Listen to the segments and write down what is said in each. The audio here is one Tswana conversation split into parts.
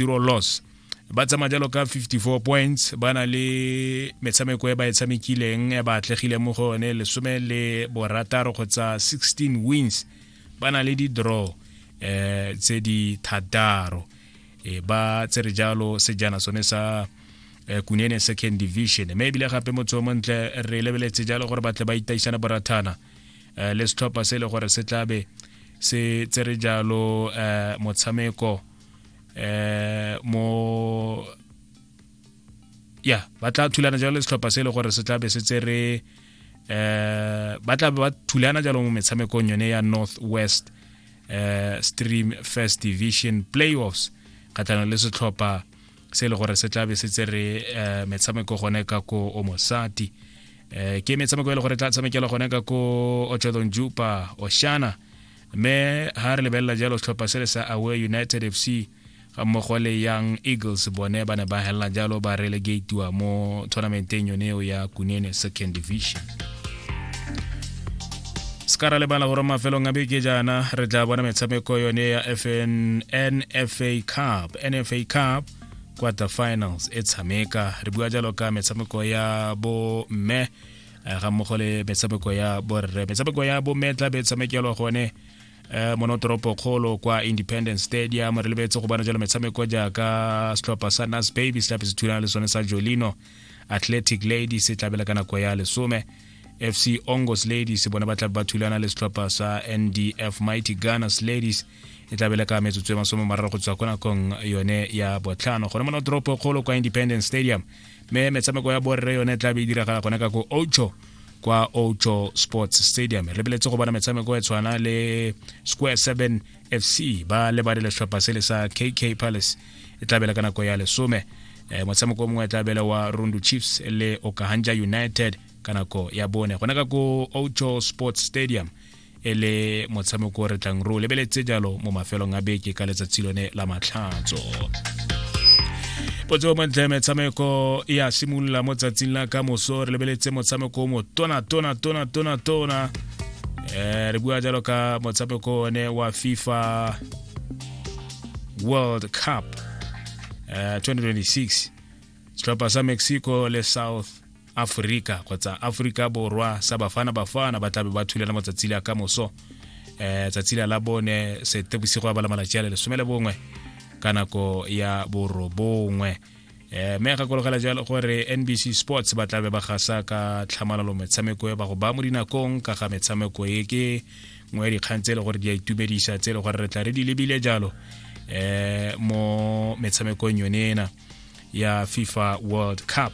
zero loss ba tsamaya jalo ka 54 points ba na le metshameko e ba e tshamekileng e ba atlegileng mo go yone lesome le borataro kgotsa 16 wins ba na le di-draw eh tse di thataro e ba tsere jalo sejana sone sa eh, kunene second division mme ebile gape motho o montle re lebeletse jalo gore batle ba itaisana borathana eh, le setlhopha se e le gore se tlabe se tsere jalo eh, motshameko eh mo ya ba tla thulana jalo le setlhopha se e le gore se tla be se tsere eh ba tla ba thulana jalo mo metshamekong yone ya north west eh stream first division playoffs kgatlhanong le setlhopha se e le gore se tla be se tsere eh, metshameko gone ka ko omosati eh ke metshameko e le gore e tla tshamekela gone ka ko ochodon jupa oshana mme ha re lebelela jalo setlhopha se le sa away united fc ga mmogo le young eagles bone ba ne ba helela jalo ba relegatiwa mo tournamenteng yone eo ya kunene second division se ka ra lebala gore mafelong a beke jaana re tla bona metshameko yone ya nfa cup nfa cup quarter finals e tshameka re bua jalo ka metshameko ya bo mme eh, ga mmogo le metshameko ya borre metshameko ya bomme tla be tshamekelwa gone eh, monotoropo kgolo kwa independence stadium re lebetse go bona jalo metshameko jaaka setlhopha sa nas baby se tlabe se thulana le sone sa jolino athletic lady se tlabela ka nako ya lesome fc ongos ladies bona ba tlabe ba thulana le setlhopha sa ndf mighty gunners ladies e tla bele ka metsotso e masome mararo go tswa ko nakong yone ya botlhano gone mona toropo kgolo kwa independence stadium mme metshameko ya borre yone e tla be e diragala gone ka ko ocho kwa ocho sports stadium re beletse go bona metshameko e tshwana le square 7 fc ba lebale letlhopha se le sa kk palace e tla bele ka nako ya lesome eh, motshameko mongwe e tla bele wa rundu chiefs le okahanja united ka nako ya bone gone ka ko ocho sports stadium e le motshameko o re tlang re o lebeletse jalo mo mafelong a beke ka letsatsi lone la matlhatso potso montle metshameko e a simolola mo tsatsing la ka moso re lebeletse motshameko o mo tona tona tona tona tona um re bua jalo ka motshameko one wa fifa world cup um eh, 2026 setlhopha sa mexico le south aforika kgotsa aforika borwa sa bafana bafana ba tlabe ba thulana matsatsi le a kamoso um eh, tsatsi la la bone sete bosigo ya bala malatsi a le lesome le bongwe ka nako ya borobongwe um eh, mme gakologela jalo gore nbc sports ba tlabe ba gasa ka tlhamalalo metshameko e ba go ba mo dinakong ka ga metshameko e ke nngwe ya dikgang tse e le gore di a itumedisa tse e le gore re tla re di lebile jalo um mo metshamekong yone ena ya fifa world cup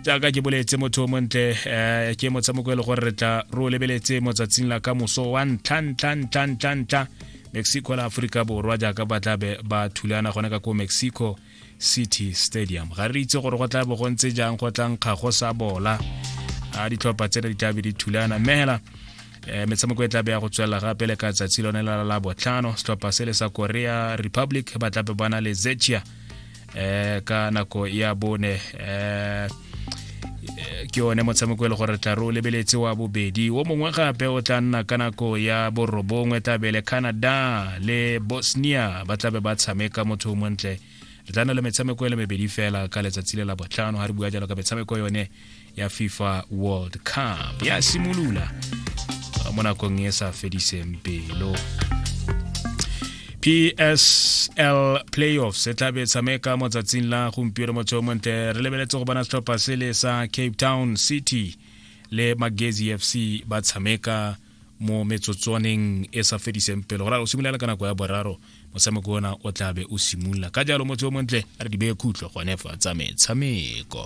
jaaka ke boletse motho o montle um ke motshameko e le gore re tla re o lebeletse motsatsing la ka moso wa ntlha ntlha ntlha ntlha ntlha mexico la aforika borwa jaaka ba tlabe ba thulana gone ka ko mexico city stadium ga re itse gore go tla bo go ntse jang go tlang kgago sa bola a ditlhopha tsena di tlabe di thulana mme hela um metshameko e tlabe ya go tswelela gape le ka tsatsi lone la la botlhano setlhopha se le sa korea republic ba tlabe ba na le zechia eh, ka nako ya bone eh, eh ke one motshameko e le gore tla re o lebeletse wa bobedi o mongwe gape o tla nna ka nako ya borobongwe tlabe le canada le bosnia ba tlabe ba tshameka motho o montle re tla nna le metshameko e le mebedi fela ka letsatsi le la botlhano ga re bua jalo ka metshameko yone ya fifa world cup ya simolola uh, mo nakong e sa fediseng pelo PSL Playoffs e tla be tshameka mo tsatsing la gompieno mo Chomonte re lebeletse go bona setlhopha sele sa Cape Town City le Magezi FC ba tshameka mo metsotswaneng e sa fediseng pelo gore o simolola ka nako ya boraro motshameko ona o tla be o simolola ka jalo motho o montle a re di beye khutlo gone fa tsa metshameko